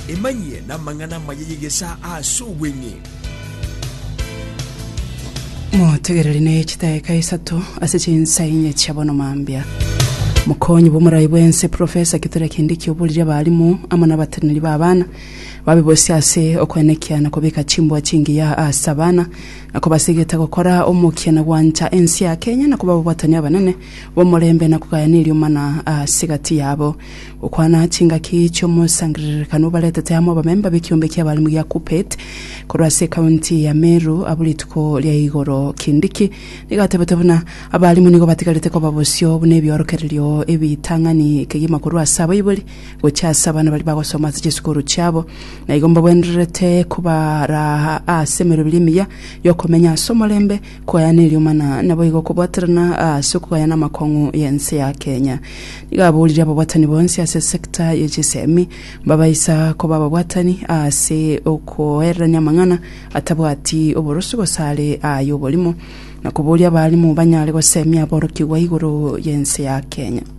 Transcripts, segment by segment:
Emanyie namang'ana amaya y'egesaa aase obweng'e. Motegereri ne chitaeka isato ase chinsa inye chia bono mambia. Mokonyi bw'omorai bw'ense Professor Kithure Kindiki oborire abalimu amo nabateneri b'abana babe bosi ase okoenekia na kobeka chimbua chingiya ase abana na kobasegeta gokora omokia na gwancha ense ya Kenya na koba ababuatani abanene b'omorembe na kogayana eriomana ase gati yabo Gokwana chingaki chi'omosangererekano obaretete amo abamemba b'ekiombe ki'abalimu gia KUPPET korwa ase ekaunti ya Meru abwo rituko ria igoro. Kindiki nigo atebete buna abalimu nigo batigarete koba bosio buna ebiorokererio ebitang'ani kegima korwa ase abaibori gochia ase abana baria bagosoma ase chisukuru chiabo na igo mbagwenererete kobaraa ase emeroberio emiya y'okomenyaa ase omorembe Koyana eriomana naboigo okobwaterana ase okogayana amakong'u y'ense ya Kenya. Nigo aborire ababwatani bonsi ase sector ye chisemi mbabaisa koba ababwatani ase okoererania amang'ana atabwati oborosu gose are aya oborimo, na koboria abarimu banyare gosemia aborokigwa igoro y'ense ya Kenya.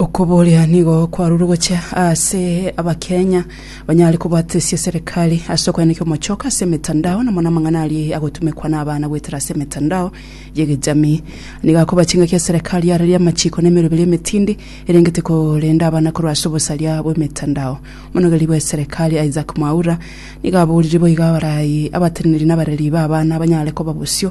Okoboria nigo kwarure gochia ase abakenya banyare kobatesia serikali ase okoenekia omochoka ase emetandao na mono amang'ana aria agotumekwa na abana goetera ase emetandao y'egejamii. Nigo akoba chingaki ya serikali yareria amachiko na emeroberi emetindi erengete korenda abana korwa ase obosaria bw'emetandao. Omonogeri bwa serikali Isaac Mwaura nigo aborire boigo abarai, abateneneri na abareri ba abana banyare koba bosio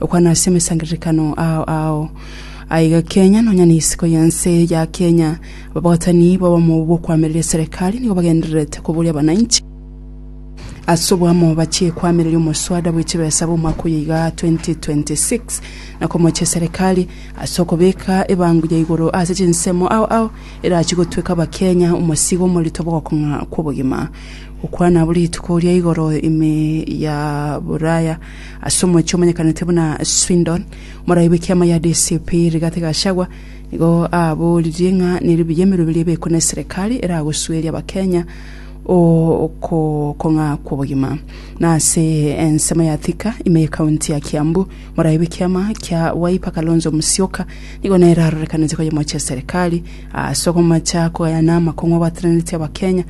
Okwana ase amasangererekano ao ao. Aiga Kenya nonya na isiko y'ense ya Kenya, ababwatani b'obomo bw'okoamereria eserekari nigo bagendererete koboria abananchi ase oboamo bachie koamereria omoswada bwe chibesa bw'omwaka oyo iga 2026 na komochia eserekari ase okobeka ebango ya igoro ase chinsemo ao ao erachie gotweka abakenya omosigo omorito bw'ogokong'a kw'obogima. Okwana abo rituko ria igoro ime ya boraya Ase omochie omanyekanete buna Swindon, omorai bw'ekiama ya DCP Rigathi Gachagua nigo aboririe ng'a neri buya emerwa ebere ebekwe na eserekari eragosueria Abakenya okong'a kw'obogima. Na ase ensemo ya Thika ime y'ekaunti ya Kiambu, omorai bw'ekiama kia Wiper Kalonzo Musyoka nigo nere arorekanete koyia omochie eserekari ase okomacha kogayana amakong'u abwataneretie Abakenya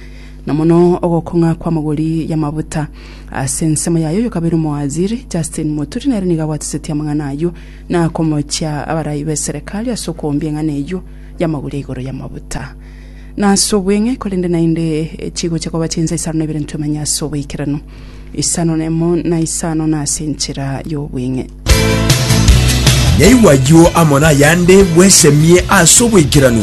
na mono ogokong'a kw'amagori y'amabuta. Ase ensemo yaye oyo kabere omowaziri, Justin Muturi, nere nigo abwatisetie amang'ana ayio na komochia abarai b'eserekari ase okoombia eng'ana eyio y'amagori igoro y'amabuta. Na ase obweng'e, korende naende chigochia koba chinsa isano na ibere ntwemenye ase oboikeranu, isano na emo na isano na ase enchera y'obweng'e. Naigwa ayio amo nayande bwesemie ase oboikeranu.